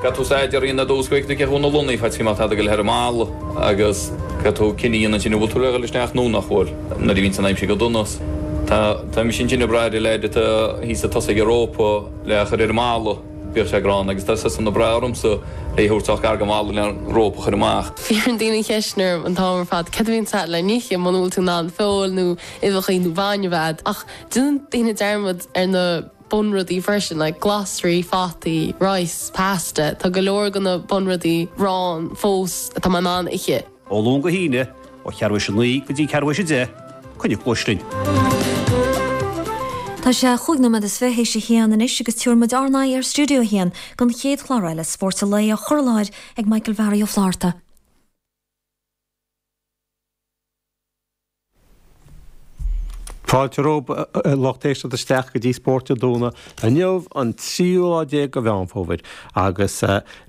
Caithfidh tú staidéar a dhéanamh Úscraig na cethú na Lunnaí fa tíma atá ag goil thar an mballa agus caithfidh tú cinneadh a dhéanamh ansin an bhfuil tú le goil isteach nó nach bhfuil nuair a bhíonns an aimsir go dona. Tá tá mise ansin ag brath ar an leaid atá thíos ag tosaigh an rópa le a chur ar an mballa, bíodh sé gránna agus tá siadsan ag brath ormsa é a thabhairt sách gar don bhalla le an rópa a chur amach. Fiafraíonn daoine an cheist sin orm an t-am ar fad cad a bhíonns a'd le n-ithe muna bhfuil tú in ann feoil nó uibheacha nó bainne a bheith a'd ach déanann daoine dearmad ar na bunrudaí freisin, like glasraí, fataí, rice, pasta, tá go leor de na bunrudaí ann fós atá mé in ann ithe. Ó Luan go hAoine, ó cheathrú tar éis 9 go dtí ceathrú tar éis 10, Coinnigh cluais linn! Tá sé chúig nóiméad is fiche tar éis a haon anois agus tabharfaidh muid ár n-aghaidh ar Stiúideo a hAon don chéad chlár eile Spórt an Lae á chur i láthair ag Michael Bharry Ó Flatharta. Fáilte romhaibh a lucht éisteachta isteach go dtí Spórt an Tráthnóna inniu an tríú lá déag de Mheán Fómhair agus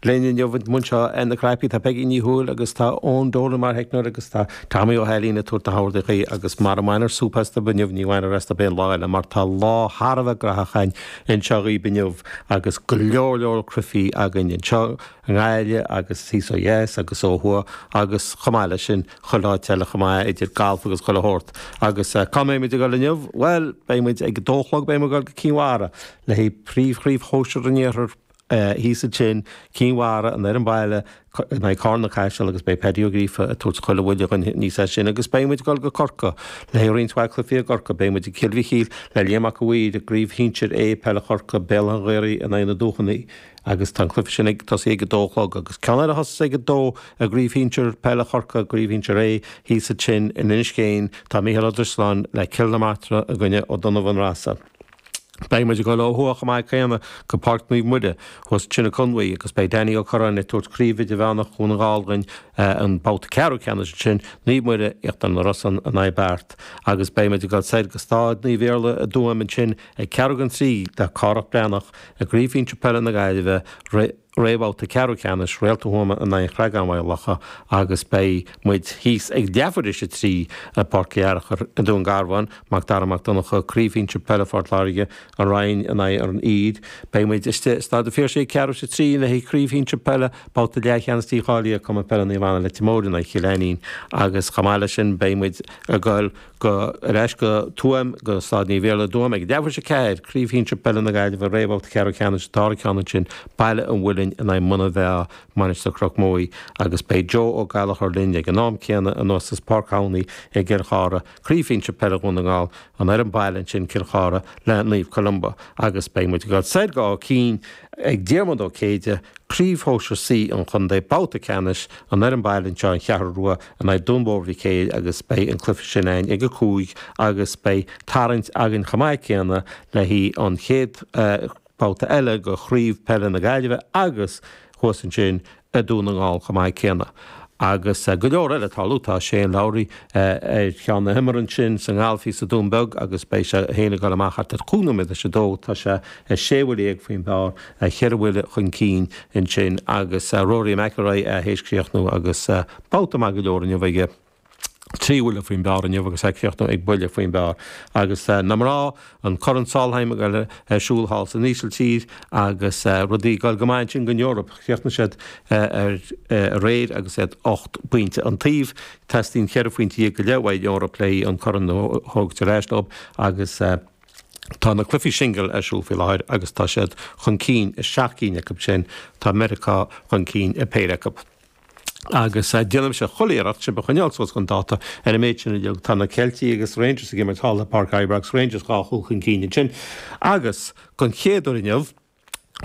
linn inniu anseo ar na cnaipí tá Peggy Ní Thuathail agus tá Eoin Dolan mar theicneoir agus tá Tommy Ó hAilín ag tabhairt na hordachaí agus mara mbainfear súp astub inniu ní bhainfear astub aon lá eile mar tá lá thar a bheith graitheach againn anseo dhaoib inniu agus go leor leor cluichí againn anseo i nGaillimh agus thíos ó dheas agus ó thuaidh agus chomh maith leis sin Chuile áit eile chomh maith, idir galf agus chuile shórt. Agus cá mbeimid ag dul inniu? Bhuel, beidh muid, ag a dó a chlog beidh muid ag dul go Cinn Mhara, le haghaidh príomhchraobh shóisir an iarthair, thíos ansin, Cinn Mhara, an fhoireann baile, in aghaidh Carna-Caiseal agus beidh Paddy Ó Gríofa ag tabhairt chuile bhuille againn aníos as sin. Agus beidh muid ag dul go Corcaigh, le haghaidh roinnt mhaith cluichí i gCorcaigh. Beidh muid i gCill Mhichíl, le Liam Mac an Mhaoir, i gCraobh Shinsir A Peile Chorcaí, Béal Átha an Ghaorthaidh in aghaidh na Dúchannaí, agus tá an cluiche sin ag tosaí ag a dó a chlog. Agus ceann eile a thosós ag a dó. I gCraobh Shinsir Peile Chorcaí Craobh Shinsir A thíos ansin in Inis Céin tá Micheál Ó Drisleáin le Cill na Martra i gcoinne Ó Donnabhain Rossa. Beidh muid ag dul ó thuaidh chomh maith céanna go Páirc Naomh Muire thuas ansin i Conmhaigh agus beidh Danny Ó Curráin ag tabhairt Craobh Idirmheánach Dhún na nGall dhúinn an babhta ceathrú ceannais ansin, Naomh Muire, Íochtar na Rosann in aghaidh Beart agus beidh muid ag dul soir go Staid Naomh Iarlaith i dTuaim ansin ag ceathrú chun a trí le Cárthach Breathnach i gCraobh Shinsir Peile na Gaillimhe roimh réamhbhabhta ceathrú ceannais Réalta Thuama in aghaidh Chreagáin-Mhaigh Locha agus beidh muid thíos ag leathuair tar éis a trí i Páirc Uí Fhearachair i nDún Garbhán, Mac Dara Mac Donncha, Craobh Shinsir Peile Phort Láirge, An Rinn in aghaidh an Uidhir. Beidh muid istigh i Staid an Phiarsaigh ag ceathrú tar éis a trí le haghaidh Craobh Shinsir Peile, babhta leathcheannais dícháilithe Cumann Peile Naomh Anna Leitir Móir in aghaidh Chill Ainnín agus chomh maith leis sin beidh muid ag goil Go, ar ais go Tuaim, go Stáid Naomh Iarlaith i dTuaim, ag leathuair théis a 4, Craobh Shinsear Peile na Gaillimhe i réamhbhabhta ceathrú ceannais an dara ceann ansin, Baile an Mhuilinn in aghaidh Muine Mheá Mainistir Chnoc Muaí, agus beidh Joe Ó Gallachóir linn ag an am céanna anuas as Páirc Thamhnaigh i gCill Chartha, Craobh Shinsear Peile Dhún na nGall, an fhoireann baile ansin Cill Chartha le Naomh Columba, agus beidh muid ag dul soir go Áth Cinn ag Diarmuid Ó Céide, Craobh Shóisir C an Chontae, babhta ceannais, an fhoireann baile anseo an Cheathrú Rua, in aghaidh Dún Mór Mhic Éil agus beidh an cluife sin againn ag a cúig agus beidh tarraingt againn chomh maith céanna le haghaidh an chéad babhta eile de Chraobh Peile na Gaillimhe agus thuas ansin i Dún na nGall chomh maith céanna agus go leor eile ag tarlú. Tá Shane Lowry ar cheann na himeartha ansin sa ngalf thíos i Dún Beag agus beidh sé fhéin ag dul amach thart ar chúig nóiméad théis a dó. Tá sé sé bhuile dhéag faoin bpár, cheithre bhuile chun cinn ansin agus Rory McIlroy théis críochnú agus Babhta maith go leor inniu aige. Trí bhuille faoin bpár inniu agus é ag críochnú ag buille faoin bpár. Agus na mná, an Corn Solheim ar siúl thall san Ísiltír agus rudaí ag dul go maith ansin don Eoraip. Chríochnaigh siad aréir agus iad ocht bpointe an taobh. Teastaíonn ceithre phointe dhéag go leith uaidh an Eoraip le haghaidh an corn a thabhairt ar ais dóibh agus tá na cluichí singil ar siúl faoi láthair agus tá siad chun cinn i seacht gcinn acu sin. Tá Meiriceá chun cinn i bpéire acu. agus déanfaidh mise chuile iarracht sibh a choinneáil suas chun dáta. Ar an méid sin uilig, tá na Ceiltigh agus Rangers ag imirt thall i bPáirc Ibrox, Rangers dhá chúl chun cinn ansin. Agus, den chéad uair inniu,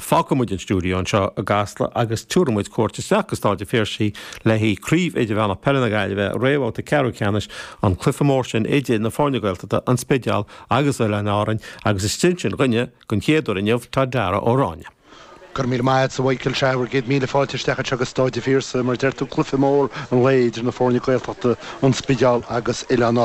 fágfaidh muid an stiúideo anseo i gCasla agus tiúrfaidh muid cuairt isteach go Stáid an Phiarsaigh le haghaidh Craobh Idirmheánach Peile na Gaillimhe, réamhbhabhta ceathrú ceannais, an cluiche mór sin idir na foirne Gaeltachta, An Spidéal agus Oileáin Árainn, agus is ansin, dhúinne, den chéad uair inniu, atá Darragh Ó Ráinne. Go raibh míle maith a't, a Mhicheáil. Sea, bhur gcéad míle fáilte isteach anseo go Stáid a' Phiarsaigh, mar a deir tú, cluiche mór an lae idir na foirne Gaeltachta, An Spidéal agus Oileáin Árainn.